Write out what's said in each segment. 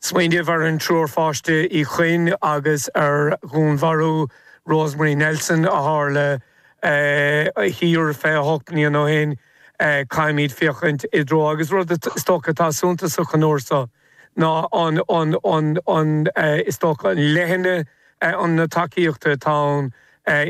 Smaoineamh ar an triúr pháiste Uí Chuinn agus ar dhúnmharú Rosemary Nelson a tharla thíos 28 mbliain ó shin, caithfimíd féachaint i dtreo, agus rud is dócha atá suntasach an uair so ná is dócha an leithne na tacaíochta atá ann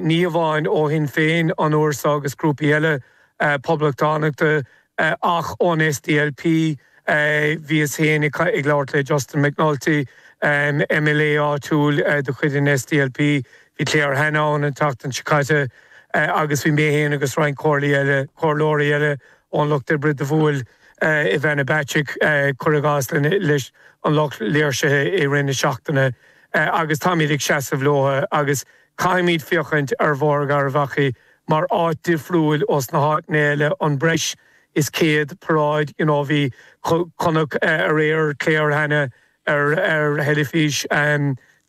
ní amháin ó Shinn Féin an uair so agus grúpaí eile Poblachtánachta, Ach ón SDLP, bhíos féin ag labhairt le Justin McNulty, MLA áitiúil de chuid an SDLP, bhí Claire Hanna ann an tseachtain seo caite, agus bhí mé féin agus roinnt comhairleoirí eile ón Lucht Oibre do bhuail Ivana Bacik, cuir i gcás, leis an lucht léirsithe i rith na seachtaine. Agus táimíd ag seasamh leo agus Caithfimíd féachaint ar Bhóthar Gharbhachaidh mar áit difriúil ós na háiteanna eile an breis is céad paráid you know chonac aréir Claire Hanna ar ar theilifís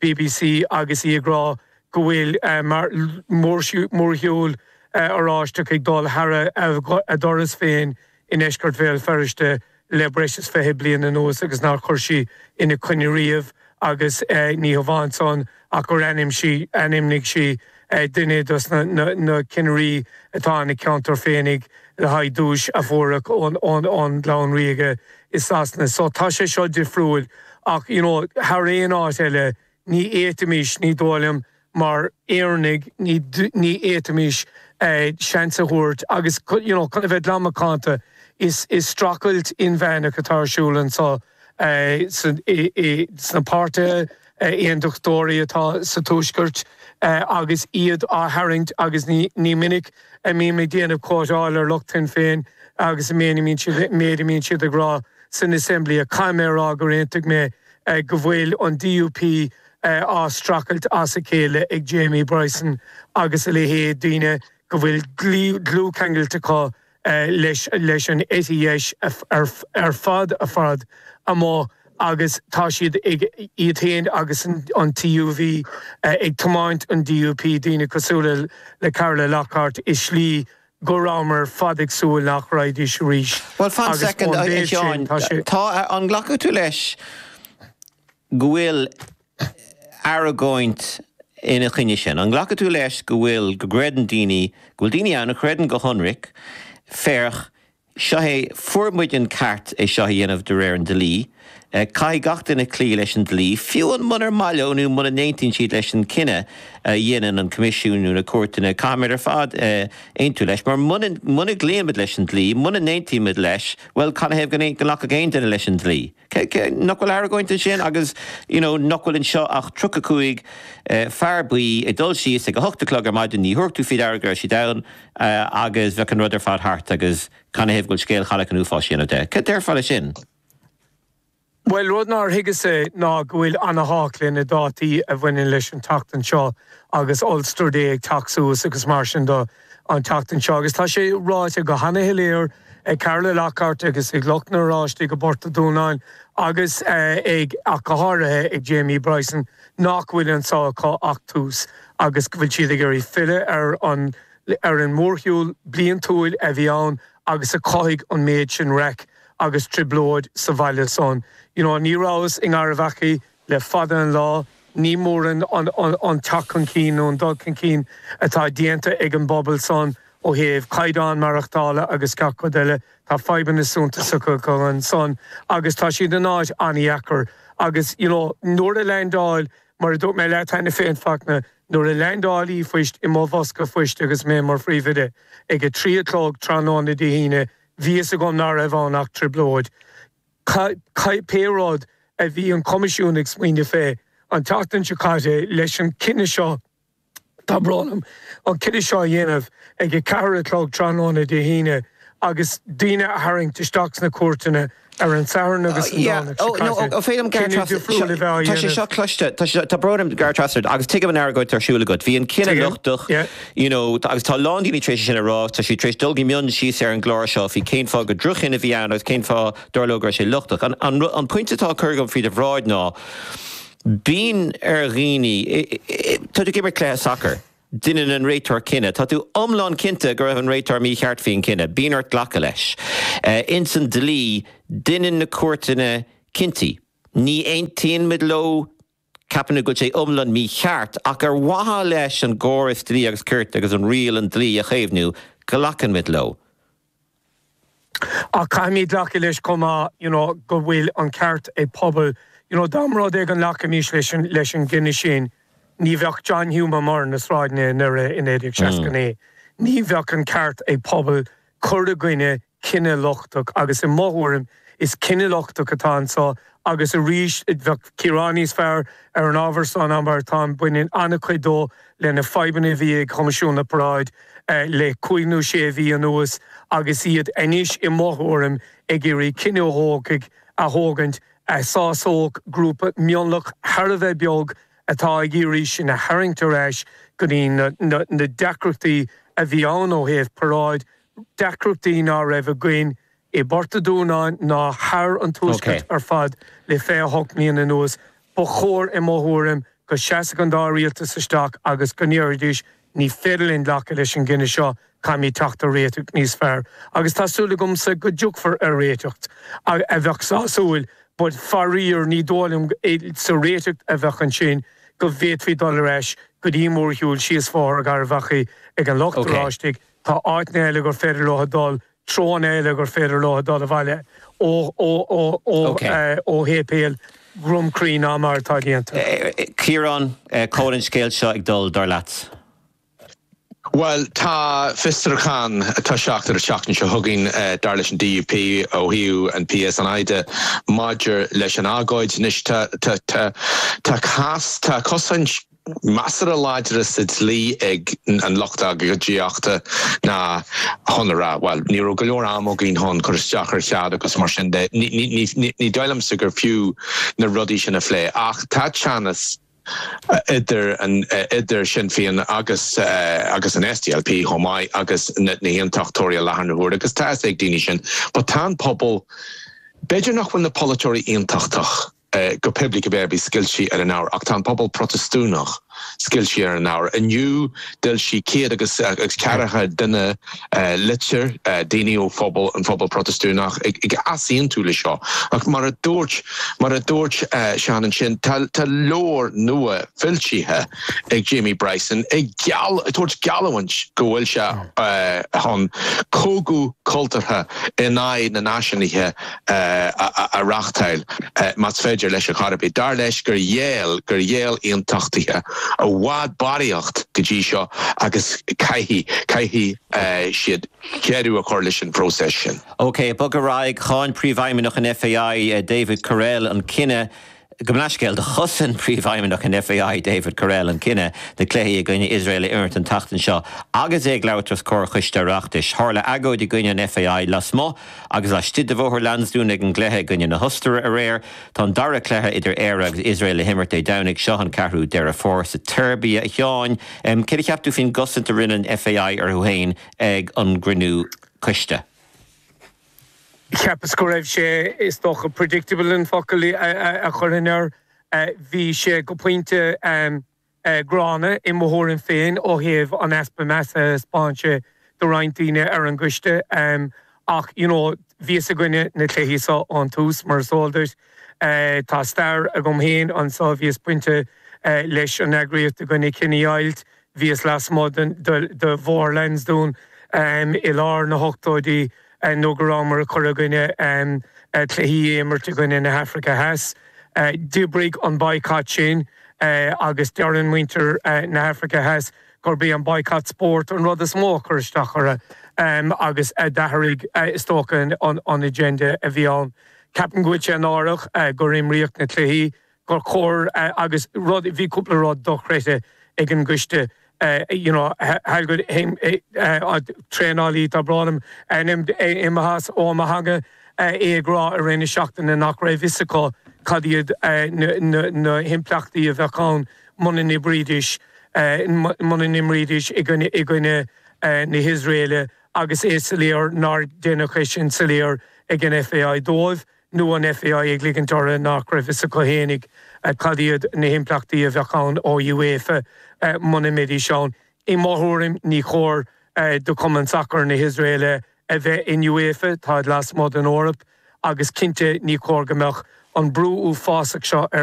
BBC agus í ag rá go bhfuil mar mórshiúl Oráisteach ag dul thar a doras féin i ndeisceart Bhéal Feirste le breis is fiche bliain anuas agus nár chuir sí ina coinne riamh agus ní hamháin san ach gur ainm sí, ainmnigh sí duine dos na cinnirí atá ina ceantar féinig le haghaidh duais a fháilt ón gclann ríoga i Sasana. So tá sé seo difriúil ach you know thar aon áit eile Ní fhéadfaimís, ní dóigh liom, mar Éireannaigh, ní fhéadfaimís seans a thabhairt agus you know chun a bheith glan macánta is strachailt inmheánach atá ar siúl annso sna páirtithe Aondachtóirí atá sa Tuaisceart agus iad á tharraingt agus ní minic a bhím ag déanamh cóitseáil ar lucht Shinn Féin agus an méid a mbíonn siad ag rá san Assembly ach caithfidh mé a rá gur aontaigh mé go bhfuil an DUP á streachailt as a chéile ag Jamie Bryson agus a leithéid, daoine go bhfuil dlúthcheangailt acu leis an eite dheis i bhfad i bhfad amach agus tá siad, iad féin agus an TUV, ag tiomáint an DUP, daoine cosúla le Carla Lockhart, i slí go rabhmar fad ag súil nach raghaidís arís Bhuel, fan soicind, a Sheáin. Tá, an nglacfaidh tú leis go bhfuil argóint ina choinne sin? An nglacfaidh tú leis go bhfuil, go gcreideann daoine, go bhfuil daoine ann a chreideann go hionraic, féach, Seo é, fuair muid an ceart é seo a dhéanamh de réir an dlí. Caithfidh gach duine cloí leis an dlí, fiú amháin munar maith leo nó muna n-aontaíonn siad leis an cinneadh a dhéanann an Coimisiún nó na cúirteanna. Caithfimid ar fad aontú leis mar muna gcloímid leis an dlí, muna n-aontaímid leis, bhuel, canathaobh go nglacfadh aon duine leis an dlí? Nach bhfuil argóint ansin agus you know nach bhfuil anseo ach tríocha cúig fear buí ag dul síos ag a hocht a chlog ar maidin, ní thabharfadh tú féd aire go raibh siad ann agus bheadh an rud ar fad thart agus canathaobh go bhfuil scéal Chailleach an Uafáis a dhéanamh de? Cad déarfá le sin? Bhuel rud nár thuigeas-sa ná go bhfuil ana-thábhacht le na dátaí a bhaineann leis an tseachtain seo agus Ulster Day ag teacht suas agus mar sin do. an tseachtain seo agus tá sé ráite go hana-shoiléir ag Carla Lockhart agus ag lucht na nOráisteach i bPort an Dúnáin agus ag, ach go háirithe, ag Jamie Bryson nach bhfuil annso acu ach tús agus go bhfuil siad ag iarraidh filleadh ar an, ar an mórshiúl bliantúil a bhí ann agus a chothaigh an méid sin raic agus trioblóid sa bhaile san. You know, ní rabhas i nGarbhachaidh Le fada an lá ní mórán an teacht chun cinn nó an dul chun cinn atá déanta ag an bpobal san ó thaobh caighdeán maireachtála agus gach rud eile. Tá fadhbanna suntasacha acu ansan agus tá siad in áit an-dheacair. Agus you know nuair a leaindeáil, mar a dúirt mé leat cheana féin Fachtna, nuair a leaindeáil ríomhphost i mo bhosca phoist agus mé mar Phríomhoide, ag a trí a chlog tráthnóna Dé hAoine, bhí fhios agam ná raibh ann ach trioblóid. Pé rud a bhí an Coimisiún ag smaoineamh fé, an tseachtain seo caite, leis an gcinneadh seo, tá brón orm, an cinneadh seo a dhéanamh ag a ceathair a chlog tráthnóna Dé hAoine agus daoine a tharraingt isteach sna cúirteanna ar an Satharn agus an Domhnach seo caite, cinneadh difriúil a bheith á dhéanamh. Tá sé seo cloiste, tá brón orm ag gearradh trasna ort, agus tuigim an argóint atá ar siúl agat. Bhí an cinneadh lochtach. You know, tá, agus tá a lán daoine tar éis é sin a rá agus tá siad tar éis dul go mion síos ar an gclár seo faoi cén fáth gur droch-chinneadh a bhí ann agus cén fáth, dár leo, go raibh sé lochtach. An, an rud, an pointe atá á chur agam féd bhráid ná, bíonn ar dhaoine, i, i, i, tá tú ag imirt cluiche sacair, deineann an réiteoir cinneadh, tá tú iomlán cinnte go raibh an réiteoir mícheart faoin gcinneadh, bíonn ort glacadh leis. Eh, ins an dlí, deineann na cúirteanna cinntí. Ní aontaíonn muid leo, Ceapann muid go bhfuil sé iomlán mícheart, ach ar mhaithe leis an gcóras dlí agus cirt agus an rial an dlí a chaomhnú, glacaimid leo. Ach caithfimíd glacadh leis chomh maith you know go bhfuil an ceart ag pobal you know dá mba rud é go nglacfaimís leis an leis an gcinneadh sin ní bheadh John Hume ar na sráideanna i nDoire i 1969 ní bheadh an ceart ag pobal cur i gcoinne cinneadh lochtach agus i mo thuairim is cinneadh lochtach atá annso agus arís bheadh Ciarán níos fearr ar an ábhar so ná mar atáim baineann an-chuid dó le na fadhbanna a bhí ag Coimisiún na bParáid le cúig nó sé mhí anuas agus iad anois i mo thuairim ag iarraidh cinneadh a thógaint a thógaint a shásódh grúpa mionlach thar a bheith beag atá ag iarraidh sinn a tharraingt ar ais go dtí na deacrachtaí a bhí ann ó thaobh paráid deacrachtaí ná raibh againn i bPort a' Dúnáin ná thar an tuaisceart ar fad le 28 mbliana anuas. Ba chóir, i mo thuairim, go seasfadh an dá rialtas isteach agus go ndéarfaidís, ní féidir linn glacadh leis an gcinneadh seo, caithfimíd teacht ar réiteach níos fearr. Agus tá súil agamsa go dtiocfar ar réiteach a bheadh sásúil. But faraor ní dóigh liom sa réiteach a bheadh ansin go bhféadfaí dul ar ais go dtí an mórshiúl síos Bhóthar Gharbhachaidh ag an Lucht Oráistigh. Tá áiteanna eile gur féidir leo dul, treoanna eile gur féidir leo dul abhaile ó shéipéal Dhrom Crí ná mar atá déanta. Ciarán, cá bhfuil an scéal seo ag dul, dar leat? Bhuel, tá fiosrúchán ag toiseacht ar an tseachtain seo chugainn, dar leis an DUP, ó thaobh an PSNI de, maidir leis an agóid. Anois, tá, tá cás, tá cosaint. measartha láidre sa dlí ag an lucht agóidíochta ná chun a rá, bhuel, ní raibh go leor ama againn chun cur isteach ar chead agus mar sin de. Ní dóigh liomsa gur fiú na rudaí sin a phlé. Ach tá teannas idir, idir Sinn Féin agus, agus an SDLP chomh maith agus na hAontachtóirí i láthair na huaire agus tá a fhios ag daoine sin. But tá an pobal, b'fhéidir nach bhfuil na polaiteoirí Aontachtach, go poiblí cibé ar bith, scoilte ar an ábhar. Ach tá an pobal Protastúnach scoilte ar an ábhar. Inniu d'fhoilsigh céad agus ceathracha duine litir, daoine ó phobal, ón phobal Protastúnach ag easaontú le seo. Ach mar a dúirt, mar a dúirt Seán ansin, tá tá leabhar nua foilsithe ag Jamie Bryson ag geall, ag tabhairt geallúint go bhfuil sé chun cogadh cultúrtha in aghaidh na Náisiúnaithe, a reachtáil más féidir leis a chor ar bith. Dar leis gur ghéill gur ghéill Aontachtaithe i bhfad barraíocht go dtí seo agus caithfidh caithfidh siad deireadh a chur leis an phróiseas sin. OK, bog ar aghaidh. Cháin Príomhfheidhmeannach an FAI, David Courell, an cinneadh. Gabh mo leithscéal, do chosain Príomhfheidhmeannach an FAI, David Courell, an cinneadh na cluichí i gcoinne Iosrael a imirt an tseachtain seo agus é ag labhairt os comhair Choiste Oireachtais. Tharla agóid i gcoinne an FAI lasmuigh agus laistigh de Bhóthar Lansdún ag an gcluiche i gcoinne na hOstaire aréir. Tá an dara cluiche idir Éire agus Iosrael le himirt Dé Domhnaigh seo, an 4ú Deireadh Fómhair, sa tSeirbia. A Sheáin, céard a cheap tú faoin gcosaint a rinne an FAI orthu féin ag an gcruinniú coiste? Cheapas go raibh sé, is dócha, predictable an focal a chuirfinn air. Bhí sé go pointe gránna i mo thuairim féin ó thaobh an easpa measa a thaispeáin sé do roinnt daoine ar an gcoiste. Ach, you know, bhíos i gcoinne na cluichí so ón tús, mar is eol duit. Tá stair agam féin anso, bhíos bainte leis an eagraíocht i gcoinne cinedheighilt, Bhíos lasmuigh de Bhóthar Lansdún i lár na hochtóidí nuair a bhíomar ag cur i gcoinne cluichí a imirt i gcoinne na hAfraice Theas. D'oibrigh an baghcat sin agus deireann muintir na hAfraice Theas gurb é an baghcat spóirt an rud is mó a chuir isteach orthu agus a d'athraigh is dócha an agenda a bhí ann. Ceapaim go bhfuil sé náireach gur imríodh na cluichí gur chóir agus rud bhí cúpla rud dochreidte ag an gcóitseálaí nó ag an traenálaí tá brón liom imithe as mo theanga é ag rá i rith na seachtaine nach raibh fhios acu cad iad na himpleachtaí a bheadh ann muna n-imreoidís i gcoinne na hIosraeile agus is soiléir nár deineadh é sin soiléir ag an FAI dóibh. nó an FAI ag ligint orthu nach raibh fhios acu fhéinig cad iad na himpleachtaí a bheadh ann ó thaobh Uefa muna mbeidís ann. I mo thuairim ní cóir do Cumann Sacair na hIosraeile a bheith in Uefa, táid lasmuigh den Eoraip agus cinnte ní cóir go mbeadh an brú uafásach seo ar